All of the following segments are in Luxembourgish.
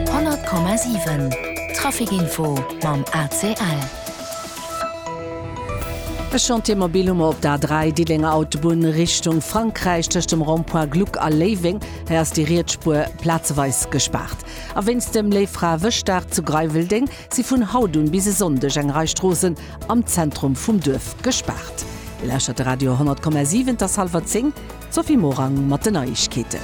100,7 Traficinfo mam ACL. E Chantier mobil hu mer op der A3, Diddelénger Autobunn Richtung Frankräich, tëscht dem Rond-point Gluck a Léiweng. Hei ass déi riets Spuer plazeweis gespaart. A wéinst dem Léiffrawëschdag zu Greiweldéng si vun haut un bis e Sonndeg eng Rei Stroossen am Zentrum vum Duerf gespaart. Dir lauschtert de Radio 100,7, et ass hallwer 10. D'Sophie Morang mat den Neiegkeeten.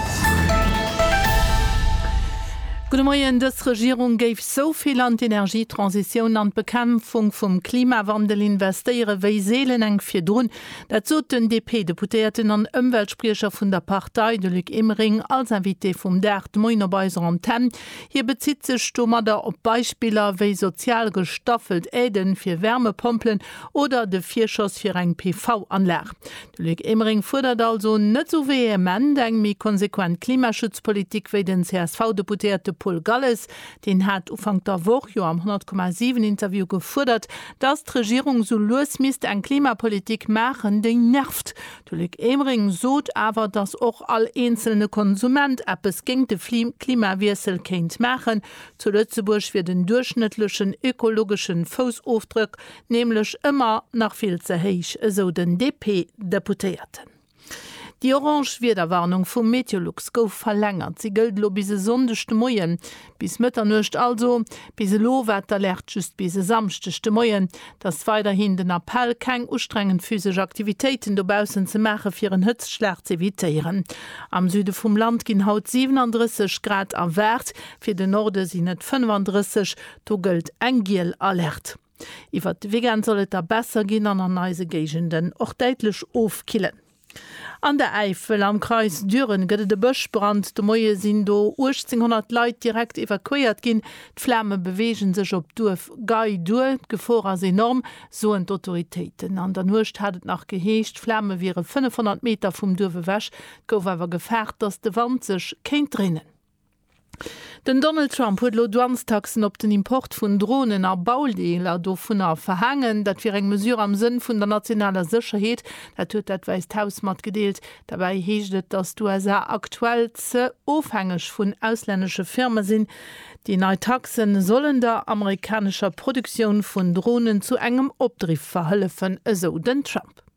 Gudde Moien, Dës Regierung géif esou vill an d'Energietransitioun an d'Bekämpfung vum Klimawandel investéiere wéi seelen enk virdrun. Dat sot den DP-Deputéierten an Ëmweltspriecher vun der Partei, de Luc Emering, als Invité vum Dag de Moien op eiser Antenn. Hie bezitt sech domadder op Beispiller wéi sozial gestaffelt Aidë fir Wärmepompelen oder de Virschoss fir eng PV-Anlag. De Luc Emering fuerdert also net esou vehement eng méi konsequent Klimaschutzpolitik wéi den CSV-Deputéierte Paul Galles. Deen hat Ufank der Woch jo am 100, 7 Interview gefuerdert, datt d'Regierung esou lues misst eng Klimapolitik maachen, déi nervt. De Luc Emering sot awer, datt och all eenzelne Konsument eppes géint de Klimawiessel kéint maachen. Zu Lëtzebuerg wier den duerchschnëttlechen ökologesche Foussofdrëck Nämlech ëmmer nach vill ze héich, esou den DP-Deputéierten. Déi orange Wiederwarnung vum Meteolux gouf verlängert. Si gëllt elo bis e Sonndeg de Moien, bis Mëtternuecht also. Bis elo war d'Alerte just bis e Samschdeg de Moien. Et ass weiderhin den Appell, keng ustrengend physesch Aktivitéiten dobaussen ze maachen, fir en Hëtztschlag z'evitéieren. Am Süde vum Land ginn haut 37 Grad erwaart, fir den Norde sinn et 35, do gëllt eng giel Alerte. Iwwert de Weekend soll et da besser ginn an an eise Géigenden och däitlech ofkillen. An der Äifel, am Kreis Düren, gëtt et e Bëschbrand. De Moie sinn do 1.800 Leit direkt evakuéiert ginn. D'Flame beweege sech op d'Duerf Gei duer. D'Gefor ass enorm, soen d'Autoritéiten. An der Nuecht hat et nach geheescht, d'Flame wiere 500 Meter vum Duerf ewech. Et gouf awer gefaart, datt de Wand sech kéint dréinen. Den Donald Trump huet elo Douanestaxen op den Import vun Dronen a Baudeeler dovunner verhaangen. Dat wier eng Mesure am Sënn vun der nationaler Sécherheet. Dat huet dat Wäisst Haus matgedeelt. Derbäi heescht et, datt d'USA aktuell ze ofhängeg vun auslännesche Firme sinn. Déi nei Taxe sollen der amerikanescher Produktioun vun Dronen zu engem Opdriff verhëllefen, esou den Trump.